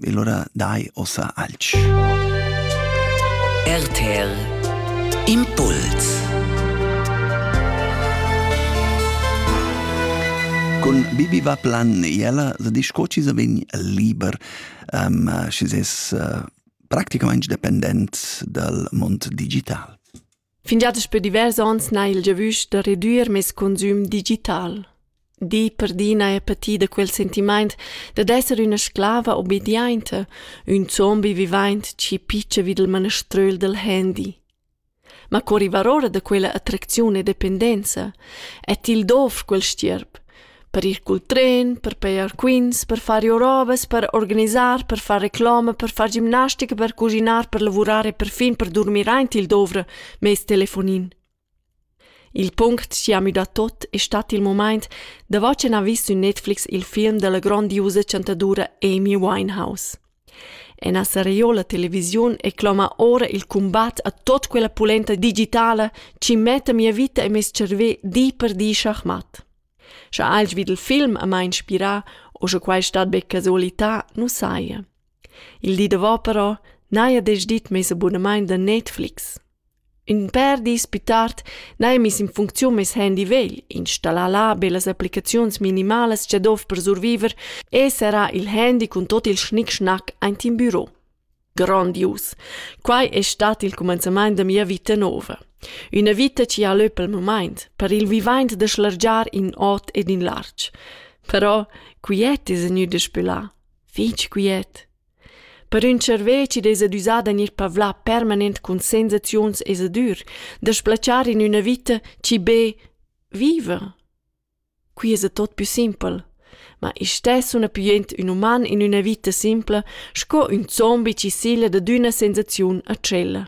E lura dai ossa alch. RTL Impuls Con Bibi va plan ella se disch co ci se vegn liber, um, schi ses uh, practicamaing dependent dal mond digital. Fingià daspö divers ons n'ha il giavüsch da redüer meis consüm digital. Di per di n'haja patì da quel sentimaint dad esser üna sclava obediainta, ün zombi vivaint chi pitscha vi dal maneströl dal handy. Ma co rivar ora da quella attracziun e dependenza? E til dovr quel stierp? per ir cul tren, per pejar quints, per far iorovas, per organisar, per far reclama, per far gimnastica, per cuschinar, per lavurar e perfin per durmir aint il dovra mez telefonin. Il punct chi ha müdà tot es stat il momaint davo ch'ün ha vis sü Netflix il film della grondiusa chantadura Amy Winehouse. Ena seriola televisiun e cloma ora il cumbat a tot quella pulenta digitala chi metta mia vita e meis cervè di per di schachmat. Scha alch vid il film a mai inspirà o sche quai stat be casualità, nu saja. Il di davo però n'haja desch dit meis abunamaint da Netflix. Ün pèr dis pü tard n'haja miss in funcziun meis handy vegl, installà là be las applicaziuns minimalas cha dovr per surviver e serrà il handy cun tuot il schnic-schnac aint in büro. Grandius! Quai es stat il cumanzamaint da mia vita nouva. Üna vita chi ha lö pel mumaint, per il vivaint da schlargiar in ot ed in larg. Però quiet es gnü daspö là, fich quiet. Per ün tscharvè chi'd esa düsà da gnir pavlà permanent cun sensaziuns e sadur, da sblatschar in üna vita chi be viva? Quai esa tot pü simpel. Ma istess sun appujond ün uman in üna vita simpla sco ün zombi chi sigla dad üna sensaziun a tschella.